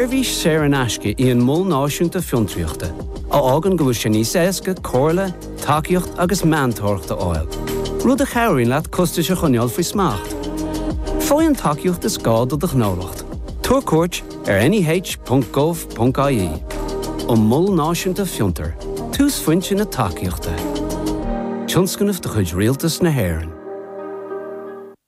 Seirbhís saor in aisce í an Mol Náisiúnta Fiontraíochta, a fhágann go bhfuil sé níos éasca comhairle, tacaíocht agus meantóireacht a fháil, rud a chabhraíonn leat costais a choinneáil faoi smacht. Faigh an tacaíocht is gá do do ghnólacht, tabhair cuairt ar neh.gov.ie An Mol Náisiúnta Fiontar, túsphointe na tacaíochta. Tionscnamh de chuid Rialtas na hÉireann.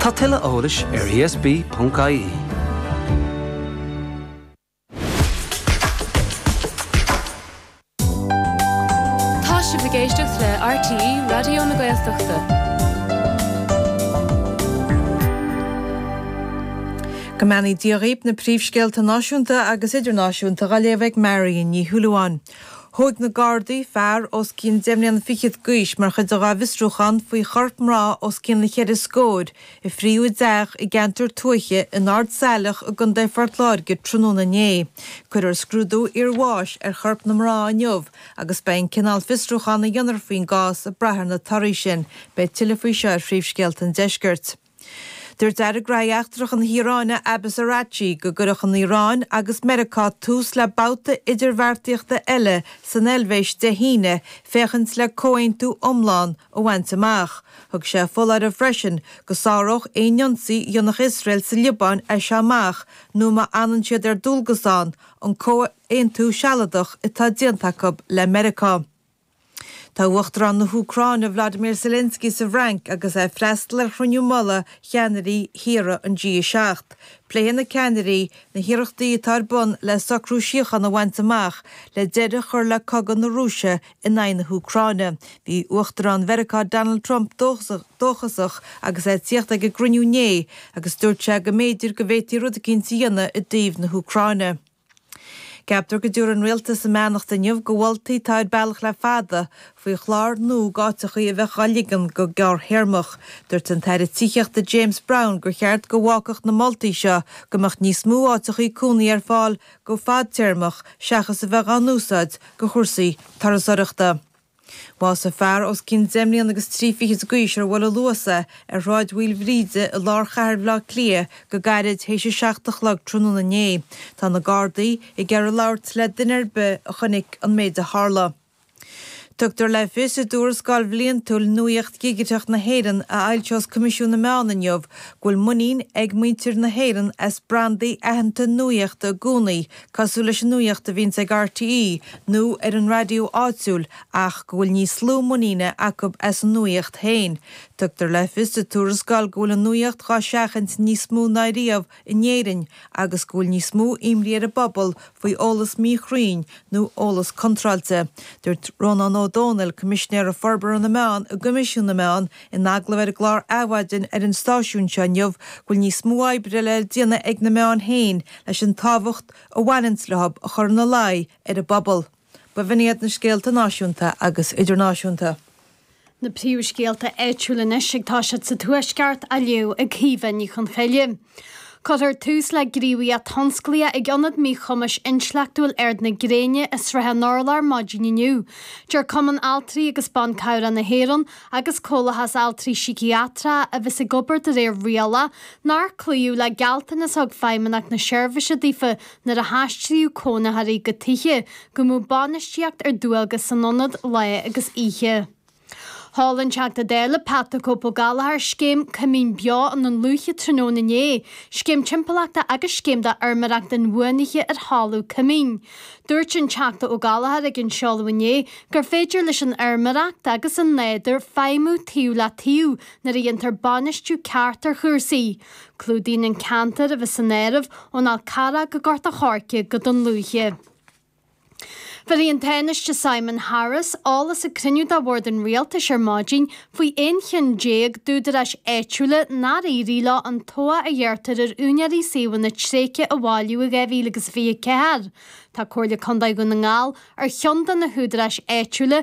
Tá tuilleadh eolais ar ESB.ie. Tá sibh ag éisteacht le RTÉ Raidió na Gaeltachta. Go mbeannaí Dia dhaoib na príomhscéalta náisiúnta agus idirnáisiúnta dá léamh ag Marion Ní Shúilleabháin. Thóig na Gardaí fear os cionn deich mbliana fichead d'aois mar chuid dhá bhfiosrúchán faoi chorp mná os cionn cheithre scóir a fríodh i dteach i gceantar tuaithe in Ard Saileach i gContae Phort Láirge tráthnóna inné. Cuirfear scrúdú iarbháis ar chorp na mná inniu agus beidh an cineál fiosrúchán a dhéanfar faoin gcás ag brath ar na torthaí sin. Beidh tuilleadh faoi seo ar phríomhscéalta an deiscirt. Dúirt Aire Gnóthaí Eachtracha na hIaráine Abbas Araghchi go gcuirfeadh an Iaráin agus Meiriceá tús le babhta idirbheartaíochta eile san Eilvéis Dé hAoine féachaint le comhaontú iomlán a bhaint amach. Thug sé foláireamh freisin go sáródh aon ionsaí a dhéanfadh Iosrael sa Liobáin as seo amach nó má fhanann siad ar dualgas ann an comhaontú sealadach atá déanta acu le Meiriceá. Tá Uachtarán na hÚcráine Vladimir Zelensky sa bhFrainc agus é ag freastal ar chruinniú mullaigh cheannairí thíortha an G7. Pléifidh na ceannairí na hiarrachtaí atá ar bun le socrú síochána a bhaint amach le deireadh a chur le cogadh na Rúise in aghaidh na hÚcráine. Bhí Uachtarán Mheiriceá Donald Trump dóchasach agus é ag tíocht ag an gcruinniú inné agus dúirt sé go mb'fhéidir go bhféadfaí rud eicínt a dhéanamh i dtaobh na hÚcráine. Ceaptar go dtabharfaidh an Rialtas a mbeannacht inniu go mholtaí atá ar bealach le fada faoi chlár nua go áiteachaí a bheadh á ligean go gearrthéarmach. Dúirt an tAire Tithíochta James Browne gur cheart go bhfágfadh na moltaí seo go mbeadh níos mó áiteachaí cónaí ar fáil go fadtéarmach seachas a bheith á n-úsáid go chúrsaí turasóireachta. Bhásaigh fear os cionn deich mbliana agus trí fichid d'aois ar bhuail an Luas é ar Shráid Mhaoilbhríde i lár chathair Bhaile Átha Cliath go gairid théis a seacht a chlog tráthnóna inné. Tá na Gardaí ag iarraidh labhairt le duine ar bith a chonaic an méid a tharla. Tugtar le fios i dtuarascáil bhliantúil Nuaíocht Dhigiteach na hÉireann a fhoilseos Coimisiún na Meán inniu go bhfuil muinín ag muintir na hÉireann as brandaí aitheanta nuaíochta i gcónaí cosúil leis an nuaíocht a bhíonns ag RTÉ nó ar an raidió áitiúil ach go bhfuil níos lú muiníne acu as an nuaíocht féin. Tugtar le fios sa tuarascáil go bhfuil an nuaíocht dhá seachaint níos mó ná riamh in Éirinn agus go bhfuil níos mó imní ar an bpobal faoi eolas míchruinn nó eolas contráilte. Dúirt Rónán Ó Domhnaill, Coimisinéir Forbartha na Meán i gCoimisiún na Meán, In agallamh ar an gclár Adhmhaidin ar an stáisiún seo inniu go bhfuil níos mó oibre le déanamh ag na meáin féin leis an tábhacht a bhaineanns leo a chur ina luí ar an bpobal. B'in iad na scéalta náisiúnta agus idirnáisiúnta. Na príomhscéalta áitiúil anois ag tosacht sa Tuaisceart, á léamh ag Caoimhe Ní Chonchoille. Cuirfear tús le gníomhaíocht thionsclaíoch ag Ionad Míchumais Intleachtúil Ard na Gréine i Srath an Urláir maidin inniu. Deir Cumann Altraí agus Ban Cabhrach na hÉireann agus Comhlathas Altraí Síciatracha a bheas ag obair de réir riala nár cloíodh le gealltanas a thug Feidhmeannacht na Seirbhíse daofa nuair a haistríodh cónaitheoirí go tithe go mbeadh bainistíocht ar dualgas san ionad lá agus oíche. Sheol an Teachta Dála Pat 'The Cope' Ó Gallchóir scéim coimín beo i nDún Lúiche tráthnóna inné, scéim timpeallachta agus scéim do fheirmeoireacht inbhuanaithe ar thalamh coimín. Dúirt an Teachta Ó Gallchóir ag an seoladh inné gur féidir leis an fheirmeoireacht agus an nádúr feidhmiú taobh le taobh nuair a dhéantar bainistiú ceart ar chúrsaí. Clúdaíonn an ceantar a bheas san áireamh ón Fhál Carrach go Gort a' Choirce go Dún Lúiche. Bhéarfaidh an Tánaiste Simon Harris eolas ag cruinniú de Bhord an Rialtais ar maidin faoi aon cheann déag d'údaráis áitiúla nár éirigh leo an tobhach a ghearrtar ar úinéirí suíomhanna tréigthe a bhailiú i 2024. Tá Comhairle Contae Dhún na nGall ar cheann de na húdaráis áitiúla